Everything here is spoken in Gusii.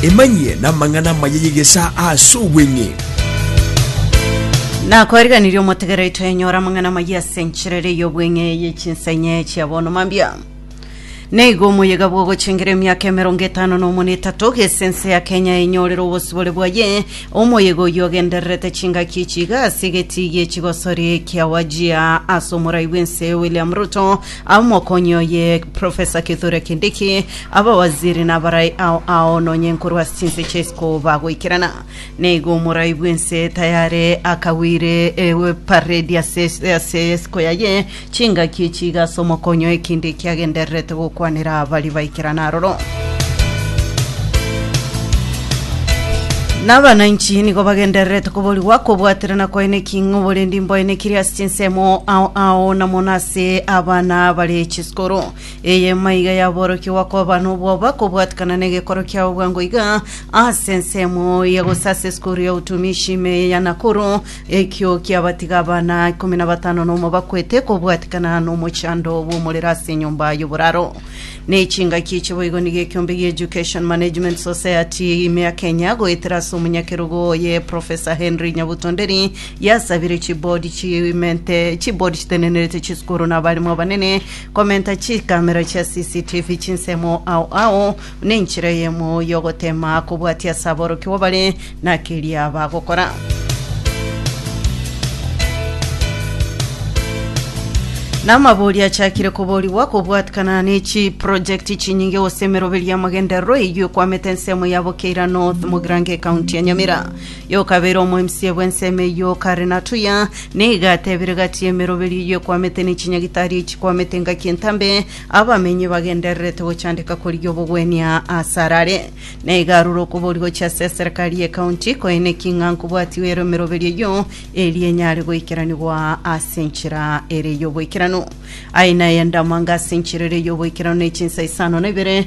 Emanyie namang'ana amaya y'egesaa ase obweng'e. Nakoariganirie omotegera oito enyora amang'ana amaya ase enchera ere y'obweng'e ye chinsa inye chia bono mambia. Neiga omoyega bw'ogochengera emiaka emerongo etano na omo na etato, gese ense ya Kenya enyorere obosibore bwaye, omoyega oyio ogendererete chingaki echi iga ase egetii gie chigosori kia Wajir ase omorai bw'ense William Ruto Omokonyi oye, Professor Kithure Kindiki, abawaziri nabarai ao ao nonye nkorwa ase chinse chia isiko bagoikerana. Neigo omorai bw'ense tayare akagwire ewe paredi ase ase isiko yaye, chingaki chiga ase omokonyi oye Kindiki agendererete gokwanera baria baikerana aroro. Nabananchi nigo bagendererete koborigwa kobwaterana kwaye neking'o borendi mboye nekiria ase chinsemo ao ao na mono ase Ase abana bare chiskoro, eye maiga yaborokigwa koba nobwoba kobwatikana negekoro kiabo bwango iga ase ensemo ya gose ase esukuru ya utumishi ime eye ya Nakuru. Ekio kiabatiga abana ikomi na batano nomo bakwete kobwatikana nomochando bw'omorero ase enyomba y'oboraro. Ne chingaki echi boigo nigo ekiombe gia Education Management Society ime ya Kenya goetera ase omonyakerogo oye Professor Henry Nyabuto Nderi Yasabire chibodi chimente, chibodi chitenenerete chisukuru na abarimu abanene komenta chikamera chia CCTV chinsemo ao ao nenchera eyemo y'ogotema kobwatia ase aborokigwa bare na keria bagokora. Namabori achakire koborigwa kobwatikana ne chiprojekti chinyinge gose emeroberio y'amagenderero eyio ekwamete ensemo ya Bukeira North, Mogirango, ekaunti ya Nyamira. Y'okabere omoemsie bw'ensemo eyio kare na tuya, nigo atebire gati y'emeroberio eyio ekwamete ne chinyagitari echikwamete engaki entambe, abamenyi bagendererete gochandeka korigia obogwenia asare are. Nigo arure okobori gochia ase eserekari y'ecounty koeneki ng'a nkobwati were emeroberio eyio eria enyare goikeranigwa ase enchera ere y'oboikeranu. Aye naye endamanga ase enchera ere y'oboikeranu ne chinsa isano na ibere,